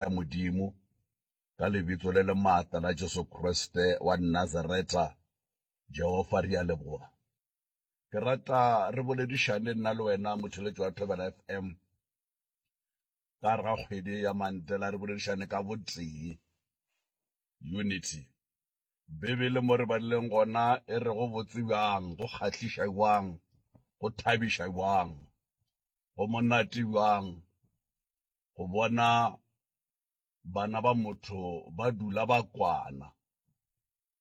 ya Modimo, ka Lebitso le le maatla la Jesu Kriste wa Nazareta, Jehofa, re a leboga. Ke rata re boledišane nna le wena, motheletši wa Thobela FM, ka gare ga kgwedi ye ya Mantela, re boledišane ka botee, unity. Bibele mo re badileng gona e re go botse bjang, go kgahliša bjang, go thabiša bjang, go monate bjang go bona Bana ba motho ba dula ba kwana.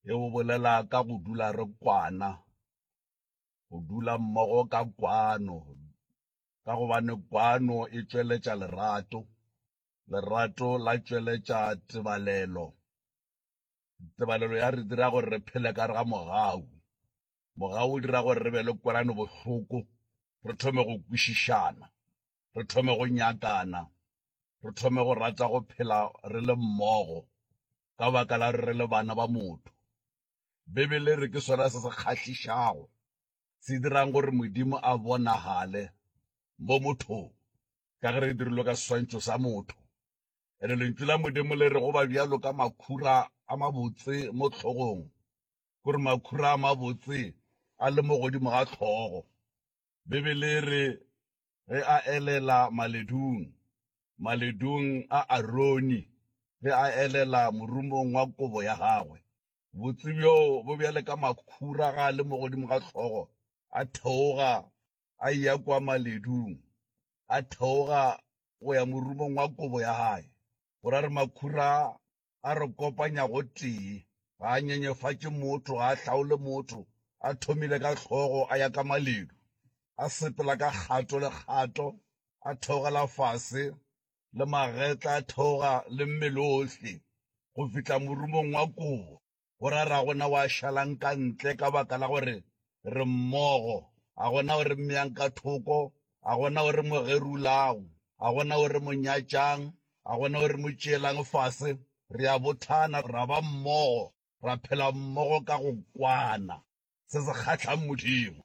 E go bolela ka go dula re kwana, go dula mmogo ka kwano, ka gobane kwano e tšweletša lerato, lerato la tšweletša tebalelo, tebalelo ya re dira gore re phele ka gare ga mogau, mogau o dira gore re be le kwelanobohloko, re thome go kwešišana. re thome go nyakana, re thome go rata go phela re le mmogo ka baka la gore re le bana ba motho. Bibele e re ke sona se se kgahlišago, se dirang gore Modimo a bonagale mo mothong, ka ge re dirilwe ka seswantšho sa motho. And-e Lentšu la Modimo le re go ba bjalo ka makhura a mabotse mo hlogong, ke gore makhura a mabotse a le mo godimo ga hlogo. Bibele e re, Ge a elela maledung, maledung a Aroni, ge a elela morumong wa kobo ya gagwe, botse bjo bo bjale ka makhura ga a le mo godimo ga hlogo, a theoga a eya kua maledung, a theoga go ya morumong wa kobo ya gae, go ra re makhura a a re kopanya gotee. Ga a nyenyefatše motho, ga a hlaole motho, a thomile ka hlogo, a ya ka maledu, a sepela ka kgato le kgato, a theogela fase, le magetla a theoga le mmele ohle, go fihla morumong wa kobo. go ra ra gona wa šalang ka ntle ka baka la gore re mmogo a gona o re mmeyang ka thoko a gona o re mo gerulago a gona o re mo nyatšang a gona o re mo tšeelang fase re a bothana ra ba mmogo ra phela mmogo ka go kwana se se kgatlhang modimo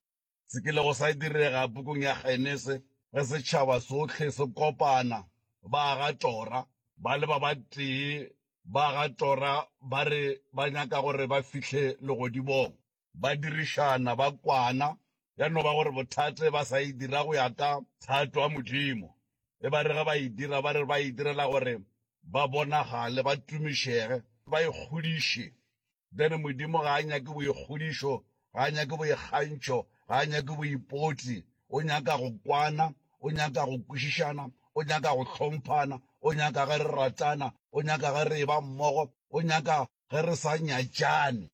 se kilego sa direga pukung ya Genese ge setšhaba sohle se kopana, ba aga tora, ba le ba batee, ba aga tora ba re ba nyaka gore ba fihle Legodimong. Ba dirišana, ba kwana, ya no ba gore bothate ba sa e dira go ya ka thato ya Modimo, e ba re ge ba e dira ba re ba e direla gore ba bonagale, ba tumišege, ba ikgodiše. Then Modimo ga a nyake boikgodišo, ga a nyake boikgantšho, ga a nyake boipotli. O nyaka go kwana, o nyaka go kwešišana, o nyaka go hlomphana, o nyaka ge re ratana, o nyaka ge re eba mmogo, o nyaka ge re sa nyatšane.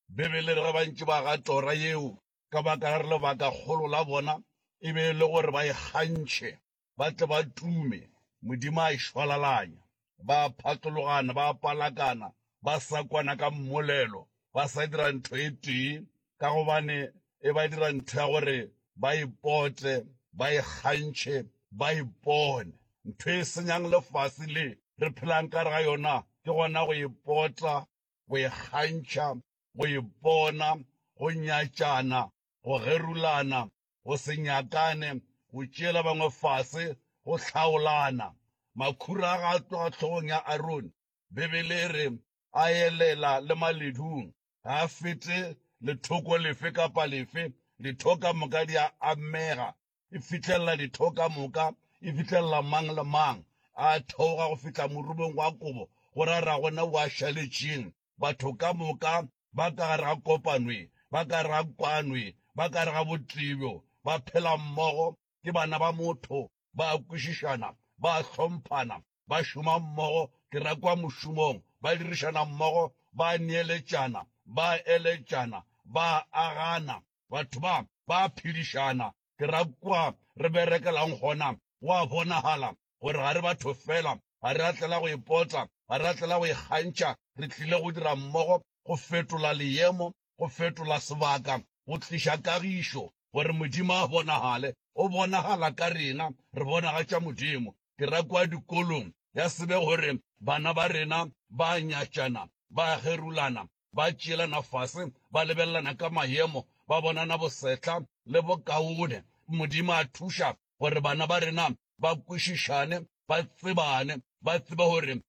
Bibele e re ge bantši ba ga tora yeo ka baka la re lebakakgolo la bona e be e le gore ba e kgantšhe. ba tle ba tume, Modimo a e šwalalanya. Ba a phatologana, ba a palakana, ba sa kwana ka mmolelo, ba sa dira ntho e tee, ka gobane e ba dira ntho ya gore ba e pote, ba e kgantšhe, ba e pone. Ntho e senyang lefase le re phelang ka gare ga yona ke gona go e pota, go e kgantšha, go e pona, go nyatšana, go gerulana, go se nyakane, go tšeela bangwe fase, go hlaolana. Makhura a ga a tloga hlogong ya Arone, Bibele e re a elela le maledung, ga a fete lethoko lefe kapa lefe. Ditho ka moka di a amega, e fihlelela ditho ka moka, e fihlelela mang le mang. A theoga go fihla morumong wa kobo, go ra ragona o a šaletšeng, batho ka moka ba ka gare ga kopano e, ba ka gare ga kwano e, ba ka gare ga botee bjo, ba phela mmogo, ke bana ba motho, ba a kwešišana, ba a hlomphana, ba šoma mmogo, ke ra kwa mošomong, ba dirišana mmogo, ba a neeletšana, ba a eletšana, ba a agana. Batho ba, ba a phedišana, ke ra kwa re berekelang gona, go a bonagala gore ga re batho fela. Ga re a tlela go ipotla, ga re a tlela go ikgantšha. Re tlile go dira mmogo, go fetola leemo, go fetola sebaka, go tliša kagišo, gore Modimo a bonagale. O bonagala ka rena, re bonagatša Modimo. Ke ra kwa dikolong, ya se be gore bana ba rena ba a nyatšana, ba a gerulana, ba tšeelana fase, ba lebelelana ka mayemo, ba bonana bosehla le bokaone. Modimo a thuša gore bana ba rena ba kwešišane, ba tsebane, ba tsebe gore